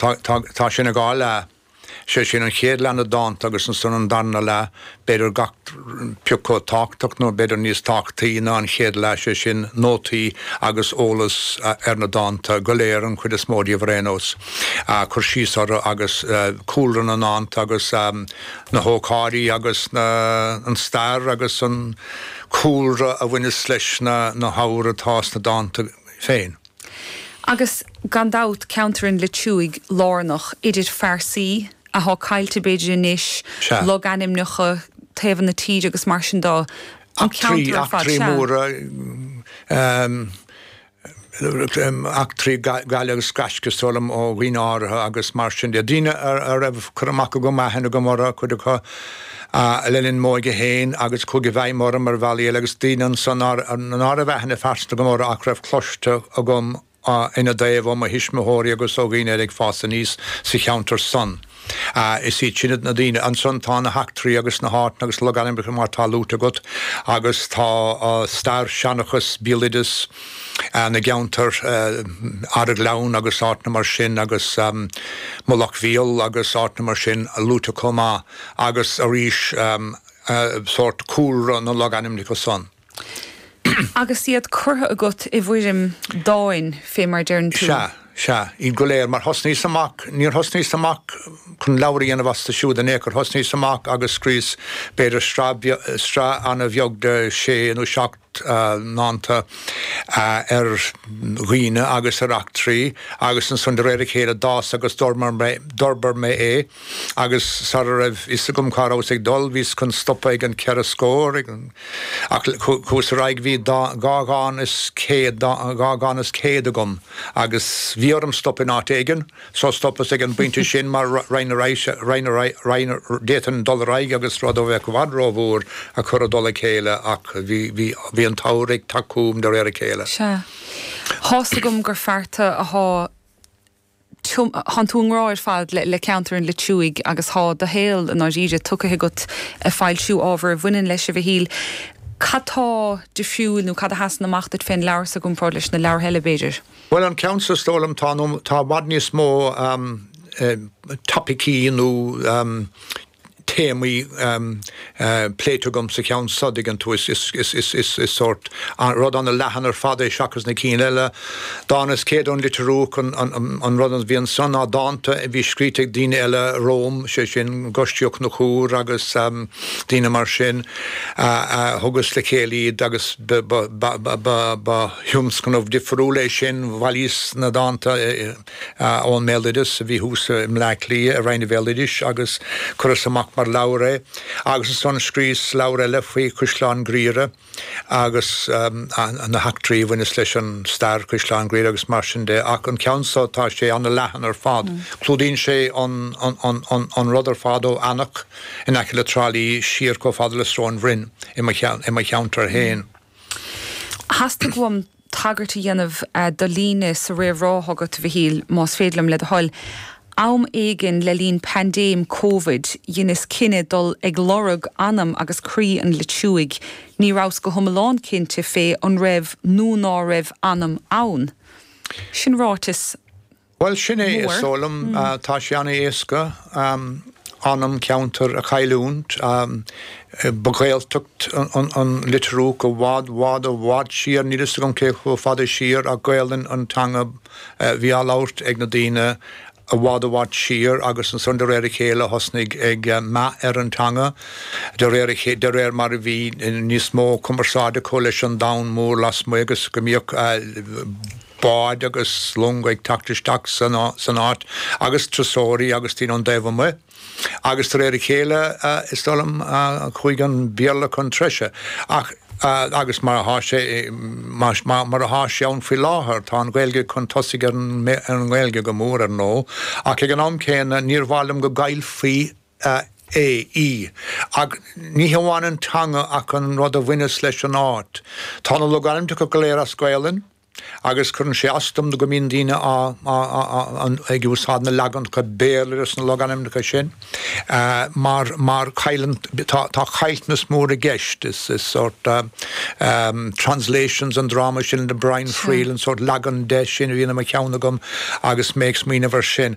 Tá, tá, tá sé ina dhá leath. Sé sin, an chéad leath na dánta agus ansan an darna leath, b'fhéidir gach pioc chomh tábhachtach nó b'fhéidir níos tábhachtaí ná an chéad leath, sé sin, nótaí agus eolas ar na dánta go léir, an chuid is mó díobh ar aon nós, cur síos orthu agus cúlra na ndánta agus na hócáidí agus na, an stair agus an cúlra a bhaineas leis na, na habhair atá sna dánta féin. Agus gan dabht, ceantar an Leitriúigh lárnach, idir phearsaí athá caillte b'fhéidir anois, Sea. logainmneacha, taobhanna na tíre agus mar sin do, an Eachtraí, ceantar ar fad. eachtraí Sea. móra, eachtraí gaile agus gaisce, is dóigh liom, ó dhaoine áirithe agus mar sin de. Daoine a raibh cur amach agam, aithne agam orthu, cuid acu, a le linn m'óige féin agus chuaigh i bhfeidhm orm ar bhealaí eile agus daoine ansan ná raibh aithne phearsanta agam orthu ach a raibh cloiste agam ina dtaobh ó mo thuismitheoirí agus ó dhaoine eile ag fás aníos sa cheantar san. Is iad sin na daoine. Ansan tá na heachtraí agus na háiteanna agus logainmneacha mar atá luaite agat agus tá stair, seanchas, béaloideas na gceantar, Araghleann agus áiteanna mar sin agus Mullach Bhéal agus áiteanna mar sin, luaite chomh maith. agus arís sórt cúlra na logainmneacha san. Agus iad curtha agat i bhfoirm dáin, fé mar a deireann tú. Sea, sea. Iad go léir. Mar thosnaíos amach, níor thosnaíos amach chun leabhar a dhéanamh astu siúd in aon chor. Thosnaíos amach agus scríos b'fhéidir sraith ana-bheag de shé nó seacht ndánta ar dhaoine agus ar eachtraí agus ansan de réir a chéile d'fhás agus d'fhorbair mé é. Agus sara raibh fhios agam cá rabhas ag dul, bhíos chun stopadh ag an cheithre scór, ach chuas ar aghaidh, bhí dhá dhán is céad, dhá dhán is céad agam, agus bhí orm stopadh in áit éigin, so stopas ag an bpointe sin, mar raghainn ar aghaidh, raghainn ar aghaidh, d'fhéadfainn dul ar aghaidh agus rud a bheadh i bhfad rómhór a chur i dtoll a chéile, ach bhí, bhí, bhí an t-abhar ag teacht chugham de réir a chéile. Sea. Thá's agam gur fear tú athá. thánn tú i ngrá ar fad le ceantar an Leitriúigh agus thá do shaol i ndáiríre tugtha agat ag foilsiú ábhar a bhaineann leis, a Mhichíl, cad tá difriúil nó cad a sheasann amach duit fén leabhar so i gcomparáid leis na leabhartha eile, b'fhéidir? Bhuel, an ceann so, is dóigh liom, tá i bhfad níos mó topaicí nó téamaí pléite agam sa cheann so dtuigeann tú, is sórt rud an-leathan ar fad é seachas na cinn eile. Dán is céad ón litir Úch an rud a bhí ansan ná dánta a bhí scríte ag daoine eile romham, sé sin gaiscíoch Ó Conchúir agus daoine mar sin. Thugas le chéile iad agus ba thionscnamh difriúil é sin, bhailíos na dánta, ón mbéaloideas a bhí thuas i mBleá Cliath i Roinn an Bhéaloidis agus cuireadh amach mar leabhar é agus ansan scríos leabhar eile faoi Chaisleán Ghriaire agus na heachtraí a bhaineas leis an stair Chaisleán Ghriaire agus mar sin de ach an ceann so tá sé ana leathan ar fad. Clúdaíonn sé an rud ar fad ó Eanach in aice le Trá Lí siar chomh fada le Sróin Bhroin i mo cheantar fhéin. Theastaigh uaim tagairt a dhéanamh do líne sa réamhrá agat, a Mhichíl, más féidir liom, le do thoil. Am éigin le linn paindéim Covid, dheineas cinneadh dul ag lorg anam agus croí an Leitriúigh. Ní rabhas go hiomlán cinnte pé an raibh nó ná raibh anam ann. Sin ráiteas Bhuel, sin é is dóigh liom. Tá sé an-éasca anam ceantair a chailliúint. Ba Ghaeltacht an Leitriúch i bhfad, bhfad, i bhfad siar, níl 'fhios agam cé chomh fada siar ach Gaelainn an teanga bhí á labhairt ag na daoine i bhfad, i bhfad siar agus ansan de réir a chéile thosnaigh meath ar an teanga de réir a chéile, de réir mar a bhí níos mó cumarsáide acu leis an domhan mór lasmuigh agus go mbíodh báid agus longa ag teacht isteach san áit agus turasóirí agus daoine ón dtaobh amuigh agus de réir a chéile is dóigh liom chuaigh an Béarla chun treise ach agus mar atá sé mar atá sé ann faoi láthair tá an Ghaeilge chun tosaigh ar an nGaeilge go mór ar ndóigh ach ag an am céanna níor mhaith liom go gcaillfí é, ach ní hamháin an teanga ach an rud a bhaineas leis an áit. Tá na logainmneacha go léir as Gaelainn agus cuireann sé as dom go mbíonn daoine ag úsáid na leaganacha Béarla de sna logainmneacha sin mar tá caillteanas mór i gceist. Is sórt translations an dráma sin le Brian Friel, an sórt leagan de sin a bhíonn i mo cheann agam agus mé ag smaoineamh ar sin.